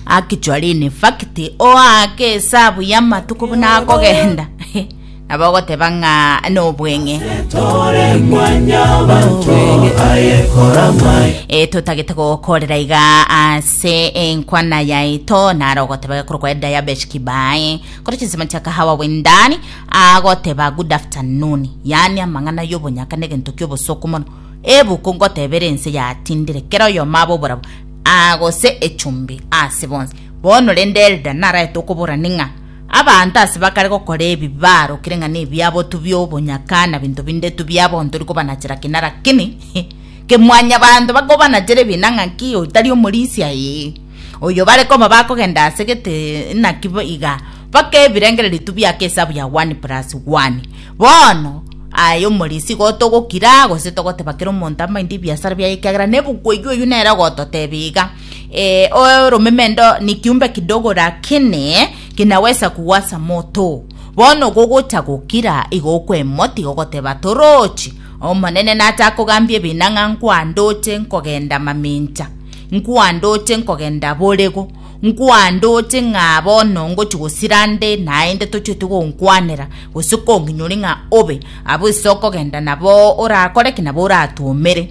Actually in fact oake esabu y'amatuko buna akogenda nabo ogoteba ng'a nobweng'e e totagete gokorera iga ase enkwana yaito naro ogoteba gekoro kwa diabetes kibae kore chinsemo chia kahawa wendani agoteba good afternoon yaani amang'ana y'obonyaka na egento ki'obosooku mono ebuku ngotebera ense yatindire kera oyomo abe oborabo Aa, gose echumbi ase bonsi. Bono rende Elda naraete okoborani ng'a abanto ase bakare gokora ebi barokire ng'a nebiabotu bi'obonyaka na binto binde tu bia bonto rikobanachera kina rakini ke mwanyabanto bakobanachere ebina ng'a ki oyo tari omorisia ee oyo bare koma bakogenda ase gete naki iga baka ebirengererio tu biake esabu ya one plus one Bono, aye omorisia, igo togokira, gose togoteba kera omonto amainde ebiasara biaye, ekiagera nebuku eyio oyio nere ogototeba iga, eh, oromemendo ni kiumbe kidogo, lakini kinawesa kuwasa moto. Bono gogocha gokira, igo okwemoti, igo ogoteba, Torochi, Omonene natakogambia ebina ng'a nkwandoche nkogenda mamincha, nkwandoche nkogenda borego. Nkwandoche ng'a bono ngochia gosira nde naende tochiete gonkwanera, gose konkinyoria ng'a obe abwo ase okogenda nabo orakore ki nabo oratwomere.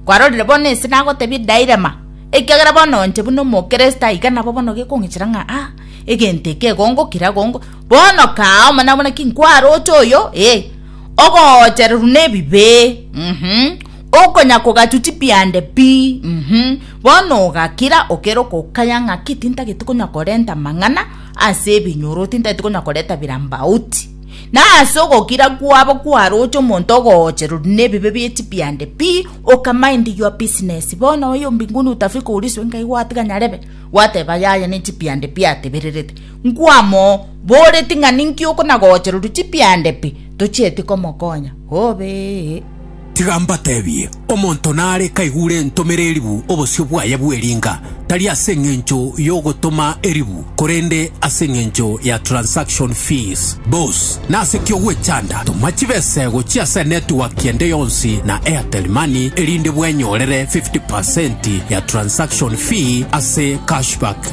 Kwarorire bono ense nagotebia edairema, ekiagera bono inche buna omokristo aiga nabo bono gekong'ichera ng'a ah egento eke igo ngokira igo ngokira. Bono kaa omonene abwo naki nkwaroche oyo, ee, ogochererwa nebibe. Okonya kogatuti piande pi, mm, bono ogakira okero kokaya ng'aki tintagete konya korenta mang'ana ase ebinyoro, tintagete konya koreta birambauti. Na ase ogokira kwabo kwaroche omonto ogoocherori nebibe bie chipiande pi, oka mind your business. Bono oyo mbinguni utafika uliswe ngai gwatiga nyarebe, gwateba yaya ne chipiande pi atebererete. Nkwamoo, boreti ng'a ninki okona goocherori chipiande pi, tochieti komokonya. Hobee. Tiga mbateebie, omonto nare kaigure entomere eribu obosio bwaye bw'eringa, tari ase engencho y'ogotoma eribu, korende ase engencho ya transaction fees. Bos, nase ki ogwechanda? Toma chibesego chia ase network ende yonsi na Airtel Money erinde bwenyorere 50% ya transaction fee ase cashback.